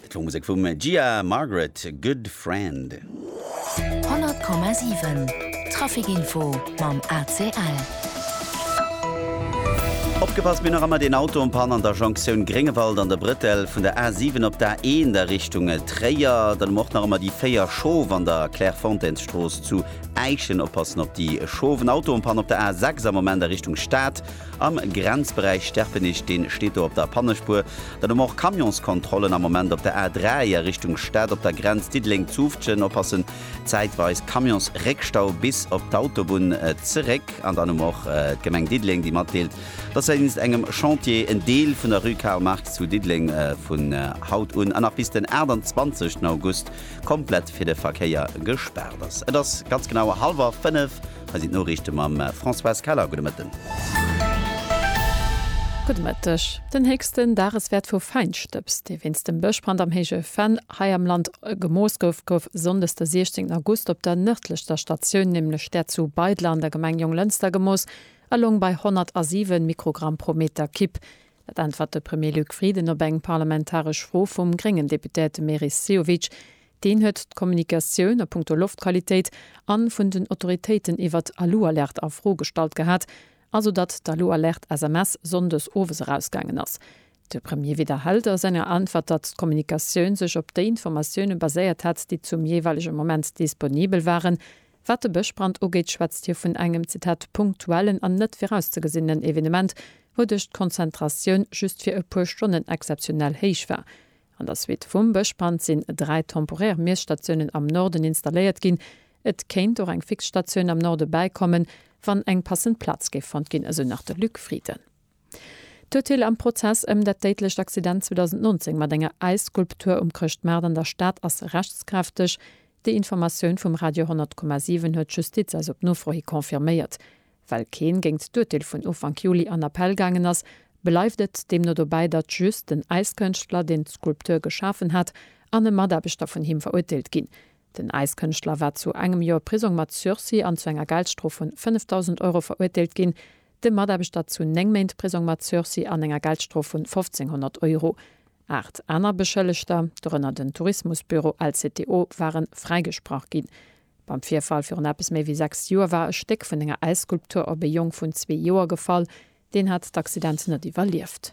D'Flormusek vum Gia Margaret, Good Friend. 100,7 Trafic Info mam ACL. Opgepasst, mir hunn nach ëmmer deen Auto en panne an der Jonktioun Gréngewald an der Brëtell vun der A7 op d'A1 a Richtung Tréier. Dann hu mer och nach ëmmer déi 4 Schof an der Clairefontaines-Strooss zu Äischen. Oppassen op déi Schof. En Auto en panne op der A6 am Moment a Richtung Stad. Am Grenzberäich Sterpenich, deen steet do op der Pannespuer, dann hu mer och Camionskontrollen am Moment op der A3 a Richtung Stad op der Grenz Diddeleng-Zutphen, oppassen, zäitweis Camionsréckstau bis op d'Autobunn zeréck. An dann hu mer och d'Gemeng Diddeleng, déi matdeelt, dass wéinst engem Chantier en Deel vun der Rue Karl Marx zu Diddeleng vun haut un a nach bis den 28 August komplett fir de Verkéier gespaart ass. Et ass ganz genau hallwer fënnef. Hei sinn d'Noriichte mam Françoise Keller. Gudde Mëtten. Gudde Mëtteg. Den héchsten Dageswäert vu Fäinstëbs, dee wéinst dem Bëschbrand am Héije Venn hei am Land gemooss gouf, gouf Sonndes de 16 August op der nërdlechster Statioun, nämlech där zu Beidler an der Gemeng Jonglënster gemooss a loung bei 107 Mikrogramm pro Meter Kib. Dat äntwert de Premier Luc Frieden op eng parlamentaresch Fro vum gréngen Deputéierte Meris Sehovic. Deen huet d'Kommunikatioun a punkto Loftqualitéit a vun den Autoritéiten iwwer d'Alu-Alerte a Fro gestallt gehat, also datt d'Alu-Alerte-SMS sonndes owes erausgaangen ass. De Premier widderhält a senger Äntwert, datt d'Kommunikatioun sech op déi Informatioune baséiert hätt, déi zum jeeweilege Moment disponibel waren. Wat de Bëschbrand ugeet, schwätzt hie vun engem, Zitat, punktuellen an net virauszegesinenen Evenement, wouduerch d'Konzentratioun just fir e puer Stonnen exzeptionell héich war. An der Suite vum Bëschbrand sinn dräi temporär Miesstatiounen am Norden installéiert ginn. Et kéint och eng fix Statioun am Norde bäikommen, wann eng passend Plaz géif fonnt ginn, esou nach de Luc Frieden. D'Urteel am Prozess ëm dat déidlecht Accident 2019 mat enger Äisskulptur um Chrëschtmaart an der Stad ass rechtskräfteg. Déi Informatioun vum Radio 100,7 huet d'Justiz eis op Nofro hi confirméiert. Well keen géingt d'Urteel vun Ufank Juli an Appell gaangen ass, bleift et deemno dobäi, datt just den Äiskënschtler, deen d'Skulptur geschafen hat, an e Mataarbechter vun him verurteelt ginn. Den Äiskënschtler war zu engem Joer Prisong mat Sursis an zu enger Geldstrof vun 5.000 Euro verurteelt ginn. Dem Mataarbechter zu 9 Méint Prisong mat Sursis an enger Geldstrof vun 1.500 Euro. Aacht aner Beschëllegter, dorënner den Tourismusbüro LCTO, ware fräigesprach ginn. Beim Virfall virun eppes méi wéi sechs Joer war e Stéck vun enger Äisskulptur op e Jong vun zwee Joer gefall. Deen hat d'Accident net iwwerlieft.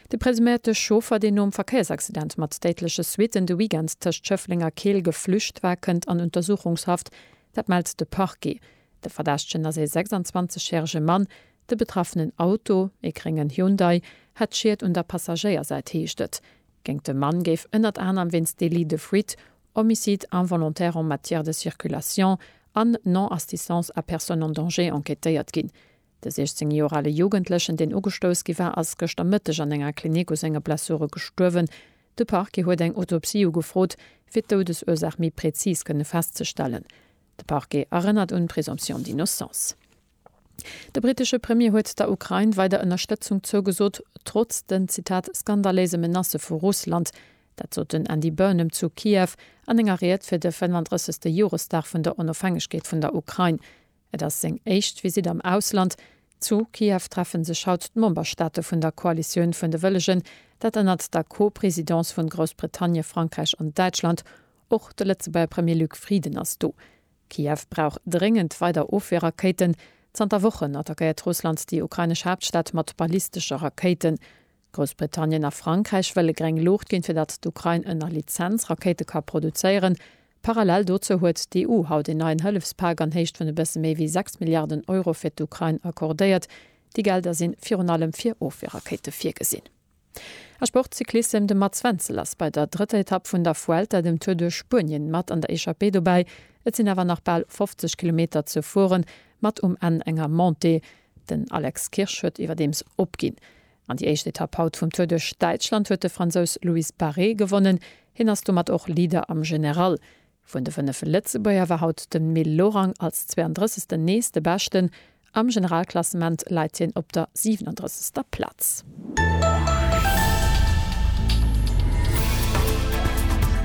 De presuméierte Chauffer, deen nom Verkéiersaccident mat déidleche Suitten de Weekend tëscht Schëffleng a Keel geflücht war, kënnt an Untersuchungshaft. Dat mellt de Parquet. De Verdächtegen ass ee 26 järege Mann. De betraffenen Auto, ee gréngen Hyundai, hätt Schied un der Passagéiersäit, heescht et. Géint de Mann géif ënnert anerem wéinst Délit de fuite, Homicide involontaire en matière de circulation an Non-assistance à personne en danger enquêtéiert ginn. De 16 Joer ale Jugendlechen, deen ugestouss gi war, ass gëschter Mëtteg an enger Klinik u senge Blessure gestuerwen. De Parquet huet eng Autopsie ugefrot, fir d'Doudesursaach méi präzis kënne festzestellen. De Parquet erënnert un d'Présomption d'innocence. De brittesche Premier huet der Ukrain weider Ënnerstëtzung zougesot, trotz den, Zitat, skandaléise Menacë vu Russland. Dat sot den Andy Burnham zu Kiew an enger Ried fir de 35. Joresdag vun der Onofhängegkeet vun der Ukrain. Et ass seng éischt Visitt am Ausland. Zu Kiew treffe sech haut d'Memberstaate vun der Koalitioun vun de Wëllegen, dat ënnert der Co-Presidence vun Groussbritannien, Frankräich an Däitschland. Och de Lëtzebuerger Premier Luc Frieden ass do. Kiew brauch dréngend weider Ofwierrakéiten. Zanter Wochen attackéiert Russland déi ukrainesch Haaptstad mat ballistesche Rakéiten. Groussbritannien a Frankräich wëlle gréng Luucht ginn, fir datt d'Ukrain ënner Lizenz Rakéite ka produzéieren. Parallel dozou huet d'EU haut een neien Hëllefspak an Héicht vun e bësse méi wéi 6 Milliarden Euro fir d'Ukrain accordéiert. Déi Gelder si virun allem fir Ofwierrakéite virgesinn. A Sport, Cyclissem, De Mats Wenzel ass bei der drëtter Etapp vun der Vuelta, dem Tour duerch Spuenien, mat an der Echappée dobäi. Et sinn awer nach bal 50 Kilometer ze fueren, mat um Enn enger Montée. Den Alex Kirsch huet iwwerdeems opginn. An déi éischt Etapp haut vum Tour duerch Däitschland huet de Fransous Luis Barret gewonnen. Hien ass domat och Leader am General. Vun de 5 Lëtzebuerger war haut de Mil Lorang als 32. nees de Beschten. Am Generalklassement läit hien op der 37. Plaz.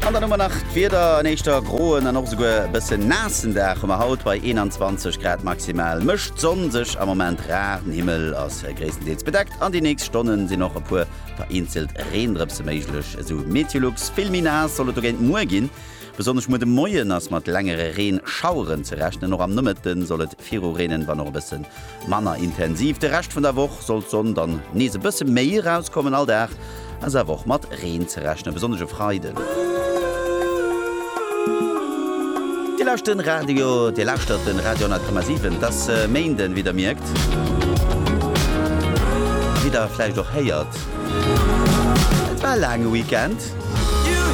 An dann hu mer nach d'Wieder, En éischter groen an och esouguer e bësse naassen Dag hu mer haut bei 21 Grad maximal. Mécht d'Sonn sech am Moment rar, den Himmel ass. Gréisstendeels bedeckt an déi nächst Stonne sinn och e puer vereenzelt Reendrëpse méiglech, esou Meteolux. Vill méi naass soll et dogéint muer ginn. Besonnesch muer de Moien ass mat längere Reenschaueren ze rechnen. Och am Nomëtte soll et virureenen, wann och e bësse manner intensiv. De Rescht vun der Woch soll d'Sonn dann nees e bësse méi erauskommen. All Dag ass awer och mat Reen ze rechnen, besonnesch e Freiden. Dir lauscht den Radio, Dir lauschtert den Radio 10,7. Et ass Méinden, wéi Der mierkt a wéi Der vläicht och héiert. Et war e laange Weekend.